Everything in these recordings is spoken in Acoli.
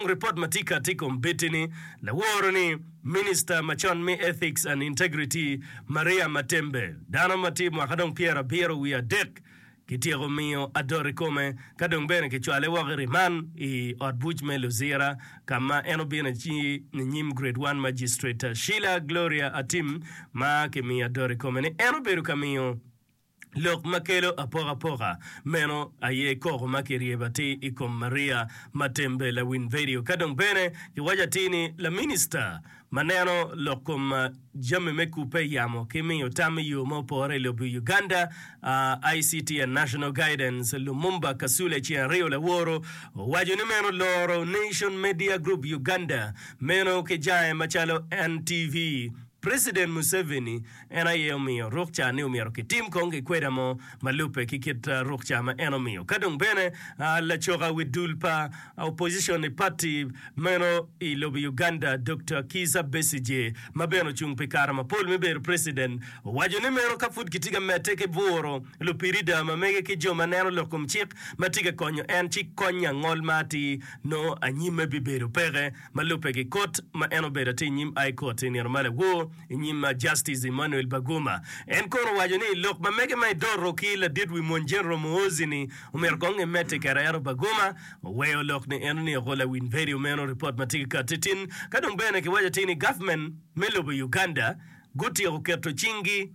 Ripot ma tika tye kom bed-di ni laworo ni Minista macon me Ethics and Integrity Maria Matembe, dano ma tye mwaka dong pyera abiro wiye adek, kityeko miyo adot i kome ka dong bene kicwale woko i riman i ot buc me Luzira ka ma en obino aci ninyim Grade One Magistrate Sheila Gloria Atim ma kimiyo adot i kome ni en obedo ka miyo Lok ma kelo apokapoka meno aye koko ma kiryebo atir i kom Maria Matembe lawiny vedio. Ka dong bene kiwaco atir ni laminista ma neno lok kom jami me kubbe, yamo ki miyo tam i yo ma opore i lobo i Uganda, ICT and National Guidance, Lumumba Kasule ceng aryo laworo owaco ni meno loro Nation Media Group Uganda meno ki jange macalo NTV, President Museveni En aye omiyo ruk ca ni omyero kitim kong gikweda mo ma lubbe ki kit ruk ca ma en omiyo. Ka dong bene lacoka wi dul pa opposition i pati meno i lobo Uganda Dokta Kiiza Besigye ma bene ocung pi kare mapol me bedo president owaco ni meno ka pud kitye ka medde ki bwuro lupirida ma mege ki jo ma neno lok kom cik ma tye ka konyo en ci kony angol ma atir nongo anyimme bibedo peke. Ma lubbe ki kot ma en obedo atir inyim High Court i nino ma lawo inyim Justice Emmanuel Baguma, en kono owaco ni lok ma mege ma edoro ki ladit wi mony General Muhoozi ni omyero kong emedde kera ento Baguma oweyo lok ni eno ni ogo lawiny bedo meno report ma tye ki kati tin ka dong bene ki waco atir ni government me lobo Uganda gutyeko keto cing gi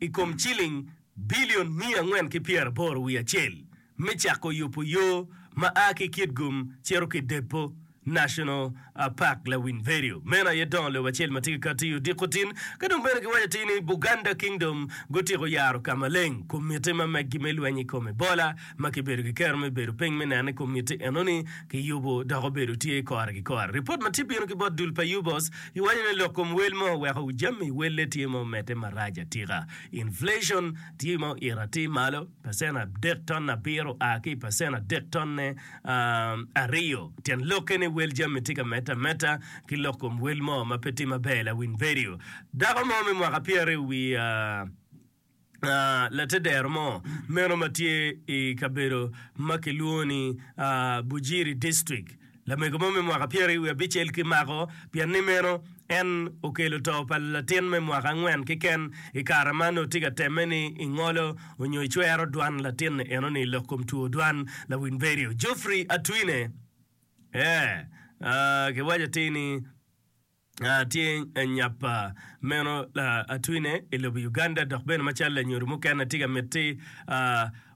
i kom ciling bilion miya angwen ki pyeraboro wiye acel me cako yubo yo ma a ki Kitgum cito ki Deppo National Park lawiny Verio. Meno aye dongo lobo acel ma tye ki katti odiko tin. Ka dong bene kiwaco atir ni Buganda Kingdom gutyeko yaro ka maleng komitti ma meggi me lweny i kom Ebola ma kibedo ki kero me bedo piny me neno ni komitti enoni kiyubo dok obedo tye kore ki kore. Ripot ma tye bino ki bot dul pa Yubos giwaco ni lok kom wel mo oweko jami welle tye ma omedde marac atika. Inflation tye ma oito atir malo, pacent adek ton abiro a ki i pacent adek tonne aryo. Tyen lokke ni wel jami tye ka medde ameda ki lok kom wel mo ma pe tye maber. Lawiny vedio. Dako mo me mwaka pyeraryo wiye a latedero mo meno ma tye i kabedo ma kilwongo ni Bujiri District, Lamego mo me mwaka pyeri wiye abicel ki mako pien ni meno en okelo to pa latin me mwaka angwen keken i kare ma nongo tye ka temme ni i ngolo onyo i cwero dwan latin eno ni lok kom two dwan lawiny bedio Geoffrey Atwine ee aa ki waco atir ni Tye nyap meno atwine i lobo Uganda dok bene macalo lanyodo mukene atye ka miti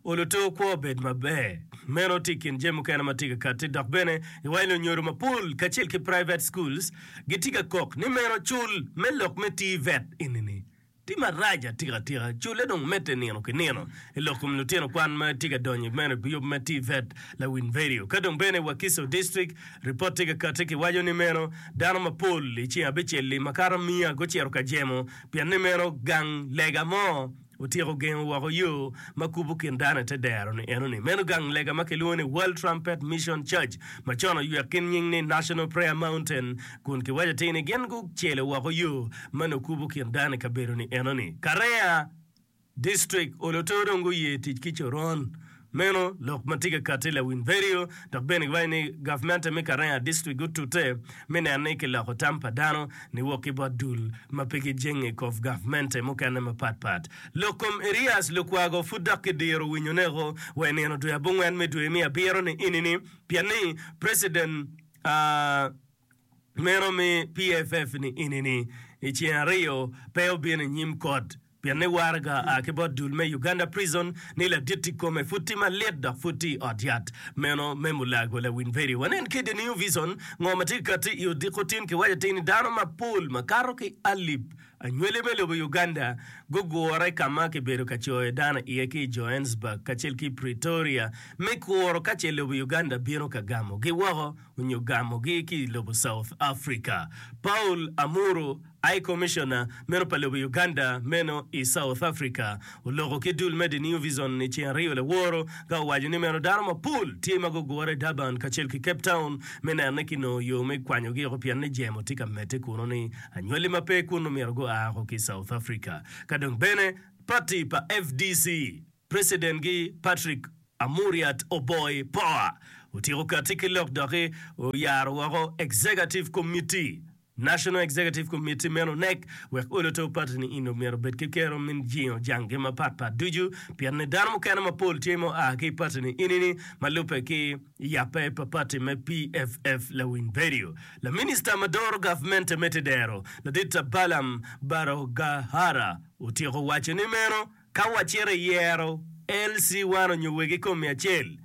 olo too kwo obed maber. Meno tye i kin jami mukene ma tye ka katti dok bene iwange lanyodo mapol kacel ki private schools gitye ka kok ni meno cul me lok me TVET enini. Tim marac atika tika cule dong medde nino ki nino i lok kom lutino kwan ma tye ka donyo mere ki yub ma TVET, lawiny vedio. Ka dong bene Wakiso District, ripot tye ka kati ki waco ni meno dano mapol i ceng abicel-li makato miya gucito ka jemo pien ni meno gang lega mo otyeko gengo woko yo ma kubo kin dano i te dero ni eno ni meno gang lega ma kilwongo ni World Trumpet Mission Church ma con oywek ki nying ni National Prayer Mountain Kun kiwaco atir ni gin gucelo woko yo ma nongo kubo kin dano i kabedo-ni enoni. Karea, District, Oloto dong guye tic ki coron meno, lok ma tye ka katti i lawiny vedio, dok bene giwaco ni gavmente me Karea, District gutute me neno ni kiloko tam pa dano ni wok ki bot dul ma pe gijenge i kov gavmente mukene mapat pat. Lok kom Erias Lukwago pud dok kidiro winyo neko wa i nino dwe abongwen me dwe me abiro ni enini, pien ni President. meno mi PFF ni inini i ceng aryo pe obino i nyim kot pien ni waraga a ki bot dul me Uganda Prison ni laditti kome pud tye malit dok pud tye i ot yat meno me Mulago Lawinveri. Wanen ki i The New Vision ngo ma tye ka katti i odiko tin kiwaco atir ni dano mapol makato ki alip Anywali me lobo Uganda gugure ka ma kibedo ka coyo dano iye ki i Johannesburg kacel ki i Pretoria me kuro ka ce lobo Uganda bino ka gamogi woko onyo gamogi ki i lobo South Africa. Paul Amuru, High Commissioner meno pa lobo Uganda meno i South Africa, oloko ki dul me The New Vision i ceng ariyo laworo ka owaco ni meno dano mapol tye ma gugure i Durban kacel ki Cape Town me neno ni kinongo yo me kwanyogi oko pien ni jemo tye ka medde kunu-ni. Anywali ma pe kunu myero gua woko ki South Africa. Ka dong bene pati pa fdc, precident-gi Patrick Amuriat Oboi Poa otyeko katti ki lok doki oyaro woko Executive Committee, National Executive Committee meno, NEC, wek olo to pati-ni in dong myero obed ki kero me jingo janggi mapat pat ducu, pienni dano mukene mapol tye mua ki pati-ni ini-ni ma lubbe ki. I yabbe pa pati me PFF Lawiny Berio, laminista ma doro gavmente me Tedero, Laditta Balaam Barogahara otyeko waco ni meno ka wacito i yero LC one onyo wegi kom miya acel,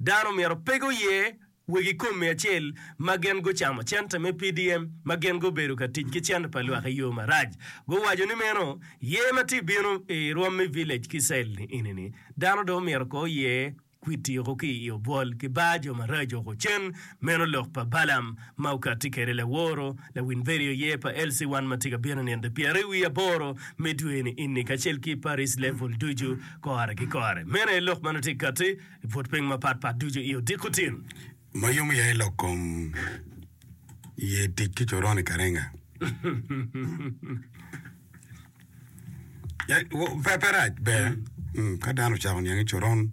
dano myero pe guye wegi kom miya acel ma gin gucamo cente me PDM ma gin gubedo ka tic ki cente pa lwak i yo marac. Guwaco ni meno yer ma tye bino i rwom me village ki cell ni eni ni dano dong myero ko oye. Kwit tyeko ki i obwol ki bar jo maraco oko cen, meno lok pa Balaam ma okatti kede laworo, lawin vedio ye pa LC1 ma tye ka bino nino pyere wi aboro me dwe ni ini kacel ki Paris Level ducu kore ki kore. Meno aye lok ma nongo tye katti i but piny mapat pat ducu i odiko tin. Ma yomo ya i lok kom ye tic ki coron i Karenga. Ya, wo- pe pe rac ber Mm, ka dano ocako niang ni coron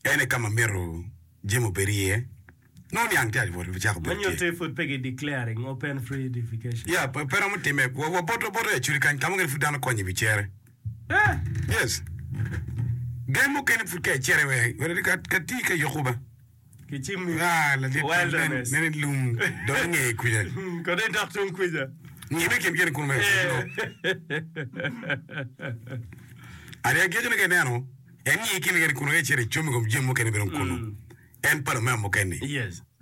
ene ka ma myero jami obed iye nongo niang tye aco pud cako bedo tye Manyotte pud pe gi declaring open free education. ya pe pe romo timme Wa- waboto boto i acuti kany ka mukene pud dano konyo i wi cere Yes. Gen mukene pud ka icere wek wek ka ka ti ka yoko ba. Ki cimmi. Ah, la dit Well done. nen nen lum do nge kuja. Kodi dok tung kuja. Ngi me kin kene kun me. Ari ageco ni ka ineno en ngi kene kene kun wek icere icom i kom jami mukene bene kunu. en palo me amuken-ni.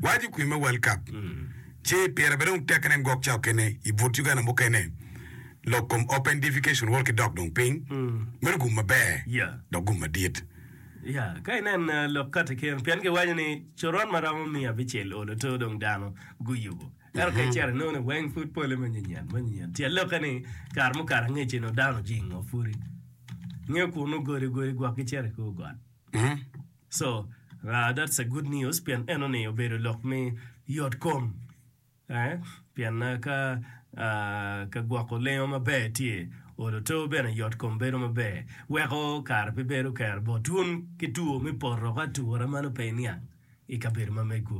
Waco i kwim me World Cup ci pire bene dong tekke nen gwok cawa kene i but Uganda mukene lok kom Open Defecation World ki dok dong piny meno gum maber dok gum madit. Ya ka inen lok kati kene pien ki waco ni coron ma romo miya abicel o lato dong dano gu yubo ento ka icito inongo ni weng pud pole ma nyenyen ma nyenyen tyen lokke ni kare mukato angec eno dano ojingo pudi ngeyo kunu godi godi gwok gicito i kor got. So uh that's a good news pien eno ni obedo lok me yot kom eh pien uh ka uh ka gwoko lengo maber tye olo to bene yot kom bedo maber weko kare pe bedo kero bot wun ki two me poto ka atura meno pe iniang ikabedo ma megwu.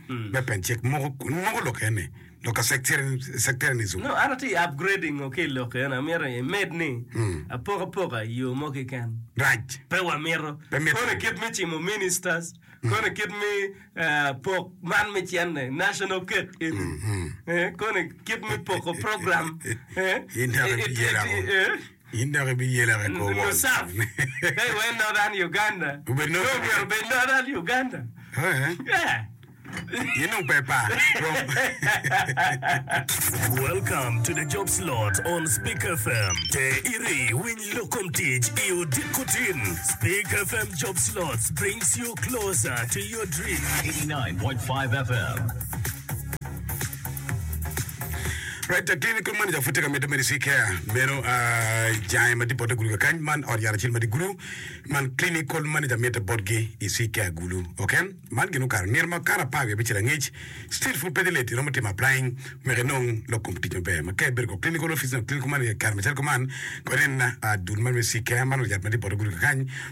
me pencek moko kun moko lokke ni loka sectarianism. No an atye upgrading ngo ki ilok eni amito imed ni apoko apoka iyo mo keken. Rac. Pe wamito. Pe mito. Kono kit me cimo ministers, kono kit me pok man me cene national cake eni, kono kit me poko program. In dok iyela ko. In dok ibiyela ki kor won. Right, Daktari kong manager pud tye ka medde Medicine Care meno ah, i jange ma dibotte gulu kakany man ot yat acel ma di gulu man clinical manager mitte botgi i Sea Care gulu ok en man gin okato nino ma kato apar wiye abicel angec still pud pe dhi late iromo timo applying wek inong lok kom tic maber ma ka ibedo kong clinical office nyo clinical manager i kare macalo kuman kong inen na ah, dul man me Sea Care man ot yat ma dibotte gulu kakany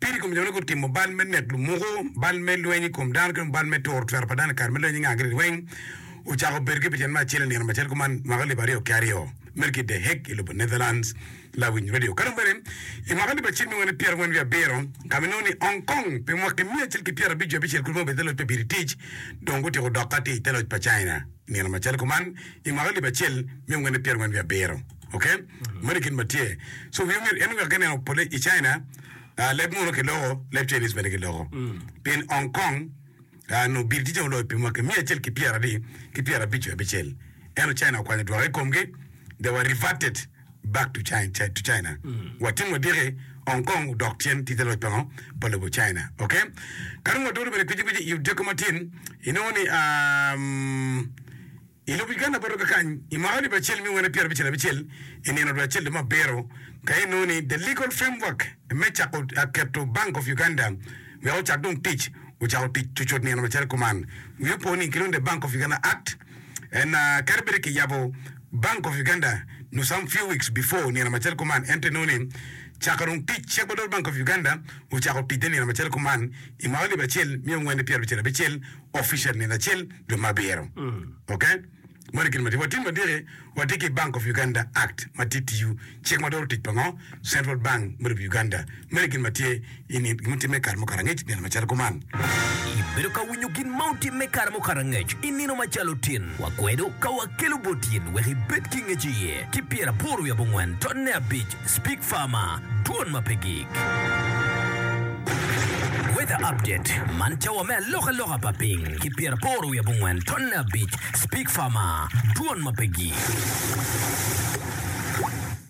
Pire kom jo-ni gutimo bal me nek lumuku, bal me lweny i kom dano ki dong bal me turo twero pa dano i kare ma lweny inga giri weng ocako bedo ki picen me acel i nino macel kuman mwaka alip aryo ki aryo mere ki The Hague i lobo Netherlands. Lawiny Radio. Ka dong bene i mwaka alip acel miwani pyera angwen wiye abiro ka ma inongo ni Hong Kong pi mwaki miya acel ki pyera abic jo abicel kulu ma obedo i te loc pa Biri Tic dong gutiko dok ka tye i te loc pa China i nino macel kuman i mwaka alip acel miya wene pyera angwen wiye abiro. ok meno i kit ma tye so wi omyero en wek eneno pole i China leb munu ki loko leb Chinese bene ki loko pien Hong Kong nongo bir tye cen oloyo pi mwaki miya acel ki pyera adi ki pyera abic nyo abicel ento China okwanyo dwoka i komgi they were reverted back to China wa timo adiki Hong Kong odok tyen tite loc pango pa lobo China ok ka dong waturu bene kweci kweci i odiko matin inongo ni I lok i Ganda Botoka kany, i mwaka alip acel me wene pyerabicel abicel, i nino dwe acel lume abiro, ka inongo ni The Legal Framework me Cako Keto Bank of Uganda Wek Ocak Dong Tic ocako tic cucut nino macalo kuman, wiye opo ni kilwongo ni The Bank of Uganda Act, and kadi bed kiyabo Bank of Uganda nyo some few weeks before nino macalo kuman, ento inongo ni cako dong tic cik madwol Bank of Uganda ocako ticne nino macalo kuman i mwaka alip acel mia wene pyerabicel abicel. official nino acel juma ma abiro ok moni gin matye watim madiki watye ki bank of Uganda act matye tiyo cik ma doro tic pango central bank me lobo Uganda moni gin matye ini gin mutime kare mukato angec nino macalo kuman. Ibedo ka winyo gin ma otime kare mukato angec i nino macalo tin wakwedo ka wakelo bot in wek ibed ki ngec iye ki pyeraboro wiye abongwen totne abic Speak Farmer, Dwon ma pe gik. Weather Update, Man cawa me alokaloka pa piny ki pyeraporo wiye abongwen tonne abic. Speak Farmer, Dwon ma pe gik.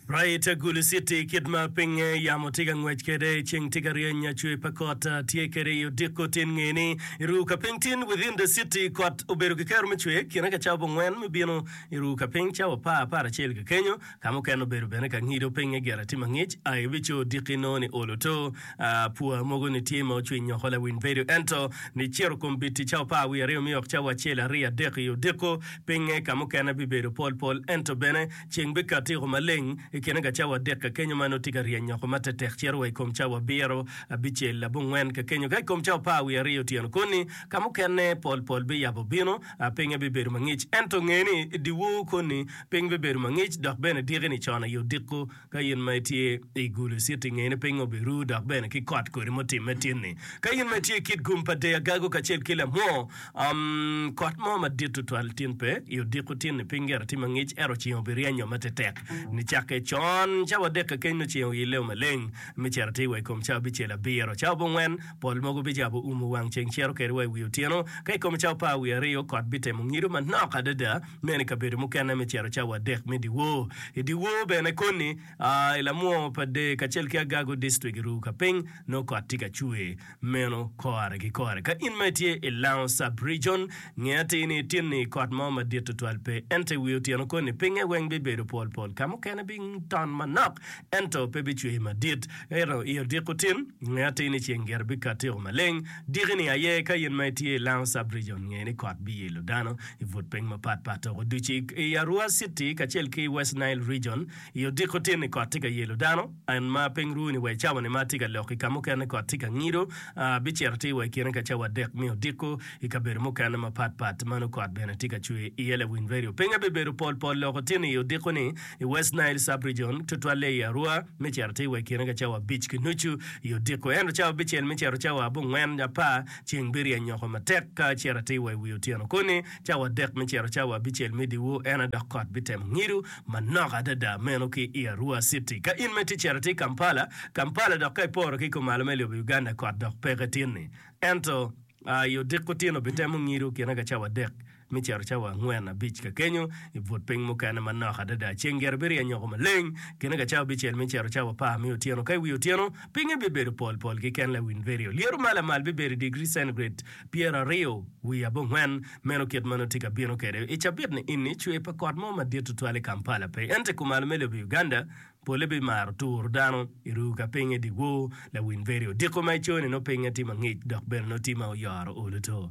Right Agulu City, Kit ma pinye yamo tye ka ngwec kwede, ceng tye ka ryeny, cwer pa kot tye kwede i odiko tin nge ni i ruu ka piny tin within the city. Kot obedo ki kero me cwer kine ka cawa abongwen me bino i ruu ka piny cawa apar, apar acel ki kenyo. Ka mukene obedo bene ka ngido pinge gire tye mangic, a i bico odiki nongo ni olo to, a pua mogo ni tye ma ocwiny nyoko lawiny bedo ento ni ciro kom biti cawa par wiye aryo miyo wok cawa acel ariyo adek i odiko pinge ka mukene bibedo pol pol ento bene ceng bikat tiko maleng i kine ka cawa adek ka kenyo ma nongo tye ka ryeny nyoko matek tek ciro wa i kom cawa abiro, abicel, abongwen ka kenyo ka i kom cawa par wiye aryo otyeno koni ka mukene pol pol biyabo bino. pinye bibedo mangic. Ento nge ni, i dyewor koni, piny bibedo mangic dok bene diki-ni con aye odiko. Ka in ma itye i Gulo Citi, nge ni pingngo biru dok bene ki kot kodi mutimme tin-ni. Ka in ma itye i kit gum pa Deagago kacel ki lamwo, um, kot mo madit tutwal tin pe. I odiko tin-ni, piny gire tye mangic, ento ceng obiryenyo matetek. Nicakke con, cawa adek kekeni nongo ceng oyille-o maleng, me cito atir wa i kom cawa abicel abiro, cawa bongwen, Pol mogo bicako umo wang ceng cito kede wa i wi otyeno. Ka i kom cawa pa awiye aryo, kot bitemo ngido manok adada meno i kabedo mukene me cito cawa adek me dyewor. I dyewor bene koni, i lamwongo pa dee kacel ki agago distrik i Ruka piny, nongo kot tye ka cwer meno kore ki kore. Ka in ma itye i Lango Sub-Region, nge atir ni ityen-ni kot mo madit tutwal pe. Ento i wi otyeno koni, pingnge weng bibedo pol pol. Ka mukene biton manok, ento pe bicwer madit. Ento i odiko tin, nge atir ni ceng gire bikatiko maleng. Diki ni aye ka in ma itye i Lango Sub-Region nge ni kot biyilo dano i but piny mapat pat dok oducu i Arua City kacel ki West Nile Region. I odiko tin ni kot tye ka yelo dano, and ma piny ru ni wa i cawa ni ma tye ka lok i ka mukene kot tye ka ngido, ah, bicito atir wa i kine ka cawa adek me odiko i kabedo mukene mapat pat ma nongo kot bene tye ka cwer iye. Lawiny redio pinga bibedo pol pol loko tin i odiko ni? I West Nile Sub-Region, tutwalle i Arua, me cito atir wa i kine ka cawa abic ki nucu i odiko. Ento cawa abicel me cito cawa abongwen nyo apar, ceng biryeny nyoko matek. Ka acito atir wa i wi otyeno koni, cawa adek me cito cawa abicel me dyewor, en aye dok kot bitemo ngido manok adada meno ki i Arua citi. Ka in mere itye cito atir Kampala, Kampala, dok ka iporo ki i kom malo me lobo Uganda, kot dok peke tin-ni. Ento, i odiko otyeno bitemo ngido kine ka cawa adek. Me cito cawa angwen abic ka kenyo, i but piny mukene manok adada, ceng gire biryeny oko maleng. Kine ka cawa abicel me cito cawa apar me otyeno ka i wi otyeno, pinye bibedo pol pol ki ken lawiny virio. Lyeto ma lamal bibedo i digri centigrade pyeraryo wiye abongwen. Meno kit ma nongo tye ka bino kwede. I cabit-ni ini, cwer pa kot mo madit tutwal i Kampala pe. Ento i kumalo me lobo Uganda, polle bimaro turo dano i ruu ka pinye i dyewor lawiny virio. Diko ma i cone nongo pinye tye mangic dok bene nongo tye ma oyoro olo to.